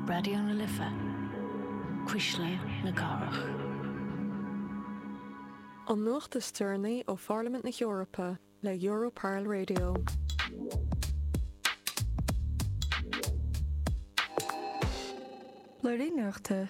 Raidió na Life, Cuisle na Cathrach. An nuacht is deireanaí ó Pharlaimint na hEorpa le Europarl Radio. Léiríodh an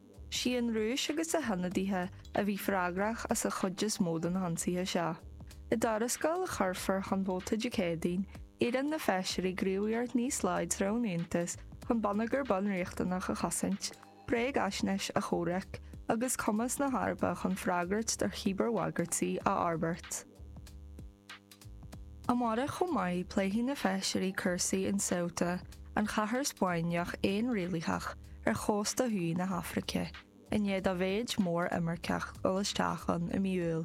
Is í an Rúis agus a hionadaithe a bhí freagrach as an chuid is mó de na hionsaithe seo. I dtuarascáil a chuirfear chun vóta Dé Céadaoin, iarrann na feisirí gníomhaíocht níos láidre ón Aontas chun bonneagar bunriachtanach a chosaint, bréagaisnéis a chomhrac agus cumas na hEorpa chun freagairt do chíbearbhagairtí a fhorbairt. Amárach chomh maith pléifidh na feisirí cúrsaí in Ceuta, an chathair Spáinneach fhéinrialaitheach ar chósta thuaidh na hAfraice, i ndiaidh do mhéid mór imirceach dul isteach ann i mí Iúil.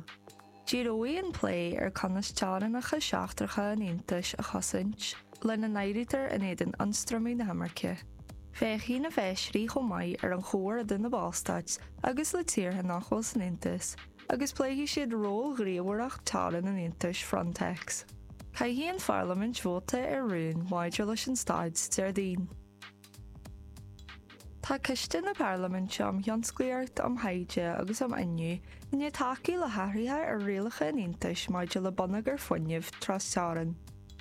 Díreoidh an plé ar conas teorainneacha seachtracha an Aontais a chosaint, lena n-áirítear in éadan ionstraimiú na himirce. Féachfaidh na feisirí chomh maith ar an chomhar idir na ballstáit agus le tíortha nach bhfuil san Aontas, agus pléifidh siad ról ghníomhaireacht teorann an Aontais, Frontex. Caithfidh an Pharlaimint vóta ar rún maidir leis an staid Déardaoin. Tá Coiste na Parlaiminte um Thionsclaíocht, um Thaighde agus um Fhuinneamh i ndiaidh tacú le hathruithe ar rialacha an Aontais maidir le bonneagar fuinnimh trasteorann.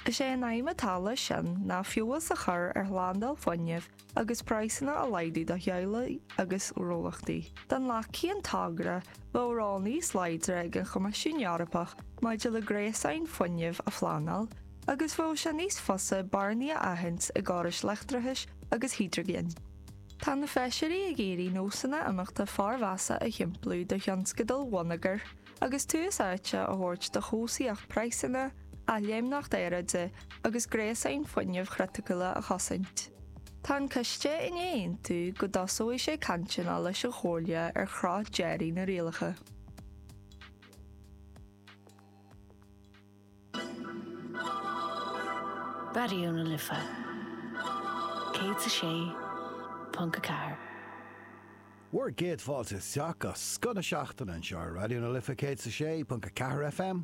Is é an aidhm atá leis sin ná feabhas a chur ar shlándáil fuinnimh agus praghsanna a laghdú do theaghlaigh agus gnólachtaí. Dá nglacfaí an togra bheadh ról níos láidre ag an Choimisiún Eorpach maidir le gréasáin fuinnimh a phleanáil agus bheadh sé níos fusa bearnaí a aithint i gcórais leictreachais agus hidrigine. Tá na Feisirí ag iarraidh nósanna imeachta formheasa a shimpliú do thionscadail bhonneagair Agus tús áite a thabhairt do chobhsaíocht praghsanna, athléimneacht aeráide agus gréasáin fuinnimh chriticiúla a chosaint, tá an Coiste i ndiaidh aontú go dtosóidh sé cainteanna leis an Chomhairle ar chruth deiridh na rialacha. Raidió na Life 106.4. Bhur gcéad fáilte isteach go scoth na seachtaine anseo ar Raidió na Life 106.4 FM.